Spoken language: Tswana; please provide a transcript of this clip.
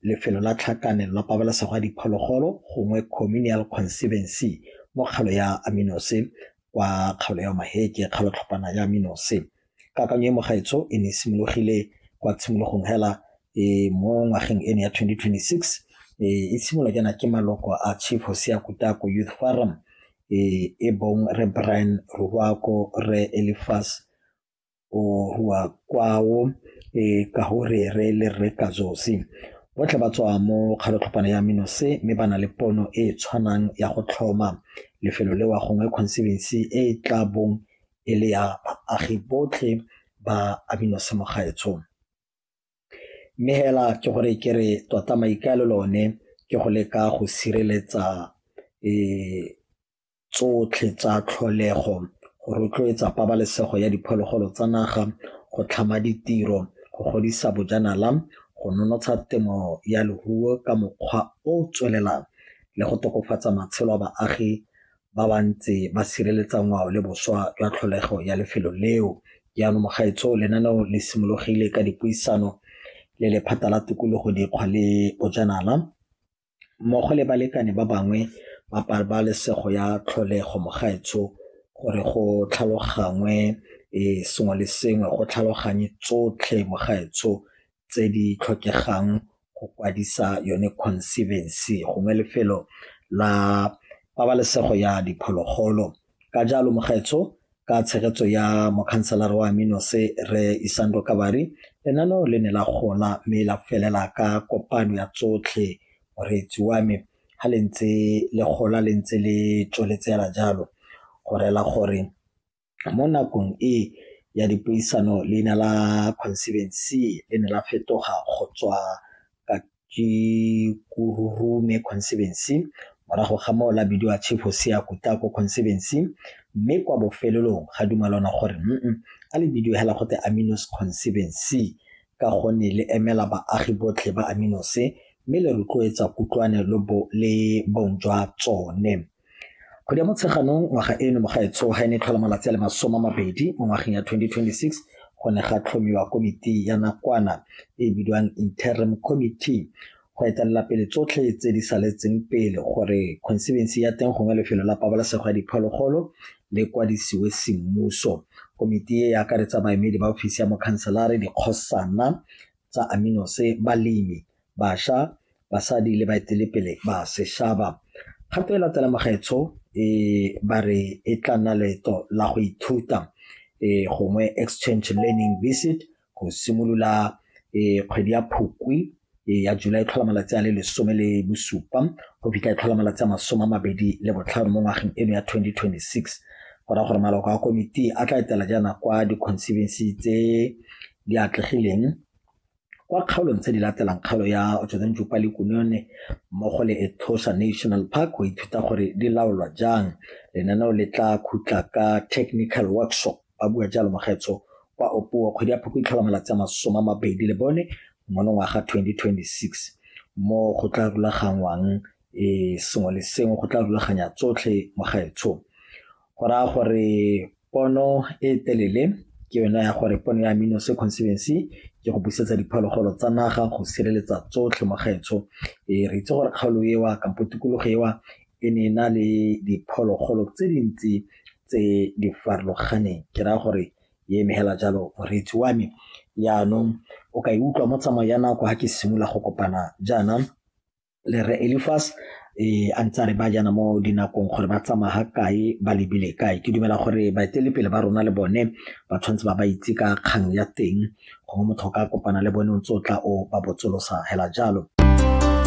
Lefelo la Tlhakanelo la Pabalesego ya Diphologolo gongwe Communal Conservancy mo kgalo ya Aminose kwa kgaolo ya Maheke, kgalo tlhopana ya Aminose. Kakanyo e mogaetsho e ne e simologile kwa tshimologong hela e mo ngwageng eno ya 2026 e e simolwa jaana ke maloko a Chief Hosea Kutako Youth Forum e bong Re Brian Ruwako, Re Elifas wa kwao ka go re re le rre ka josi botlhe ba tswa mo kgalotlhopana ya mino se mme ba na le pono e e tshwanang ya go tlhoma lefelo le wa gongwe conservancy e e tla bong e le ya baagi botlhe ba amino se mo gaetsong mme hela ke gore ke re tota maikaelelo one ke go leka go sireletsa tsotlhe tsa tlholego, go rotloetsa pabalesego ya diphologolo tsa naga, go tlhama ditiro, go godisa bojanala, go nonotsha temo ya leruo ka mokgwa o o tswelelang le go tokafatsa matshelo a baagi ba ba ntse ba sireletsa ngwao le boswa jwa tlholego ya lefelo leo. Jaanong mogaetsho lenaneo le simologile ka dipuisano le lephata la tikologo, dikgwa le bojanala. mmogo le balekane ba bangwe ba pabalesego ya tlholego mogaetsho gore go tlhalogangwe e sengwe le sengwe go tlhaloganye tsotlhe mogaetsho tse di tlhokegang go kwadisa yone conservancy gongwe lefelo la pabalesego ya diphologolo Ka jalo mogaetsho ka tshegetso ya mokhanselara wa Aminose Rre Isando Kabari, lenaneo le ne la gola mme la felela ka kopano ya tsotlhe moreetsi wa me ha le ntse le gola le ntse le tsweletse hela jalo go rela gore mo nakong e ya dipuisano leina la conservancy le ne la fetoga go tswa ke Kururume Conservancy morago ga moo la bidiwa Chief Hosea Kutako Conservancy mme kwa bofelelong ga dumalana gore mm a le bidiwe hela go te Aminos Conservancy ka gonne le emela baagi botlhe ba Aminose mme le rotloetsa kutlwane le bong jwa tsone Kgwedi ya Motsheganong ngwaga eno mo gaetsho ga e ne e tlhola malatsi a le masome a mabedi mo ngwageng ya 2026 go ne ga tlhomiwa komiti ya nakwana e e bidiwang Interim Committee go etelela pele tsotlhe tse di saletseng pele gore conservancy ya teng gongwe lefelo la pabalesego ya diphologolo le kwadisiwe semmuso. Komiti e e akaretsa baemedi ba ofisi ya mokhanselare, dikgosana tsa Aminose, balemi, basha, basadi le baetelepele ba seshaba. Kgato e latela magaetsho e ba re e tla nna leeto la go ithuta e gongwe exchange learning visit go simolola e kgwedi ya phukwi e ya July e tlhola malatsi a le lesome le bosupa go fitlha e tlhola malatsi a masome a mabedi le botlhano mo ngwageng eno ya 2026 go raya gore maloko a komiti a tla etela jaana kwa di-conservancy tse di atlegileng kwa kgaolong tse di latelang kgaolo ya Otjodanjupa le Kunone mmogo le Etosha National Park go ithuta gore di laolwa jang lenaneo le tla khutla ka technical workshop ba bua jalo mogetso kwa Opuo kgwedi ya phoko itlhola malatsi a masoma mabedi le bone monongwaga 2026 mo go tla rulaganngwang e sengwe le sengwe go tla rulaganya tsotlhe mogaetsho go raya gore pono e telele ke yone ya gore pono ya amino se conservancy ke go busetsa diphologolo tsa naga go sireletsa tsotlhe mo gaetsho e re itse gore kgaolo ewa kampo tikologo ewa e ne e na le diphologolo tse dintsi tse di farologaneng ke raya gore e emegela jalo moreetsi wa me jaanong o ka e utlwa mo tsamao ya nako ga ke simolola go kopana jaana le re Elifas e a ntse a re ba jana mo dinakong gore ba tsamaya ga kae ba lebile kae ke dumela gore baetelepele ba rona le bone ba tshwanetse ba ba itse ka kgang ya teng gongwe motho ka kopana le bone o ntse o tla o ba botsolosa hela jalo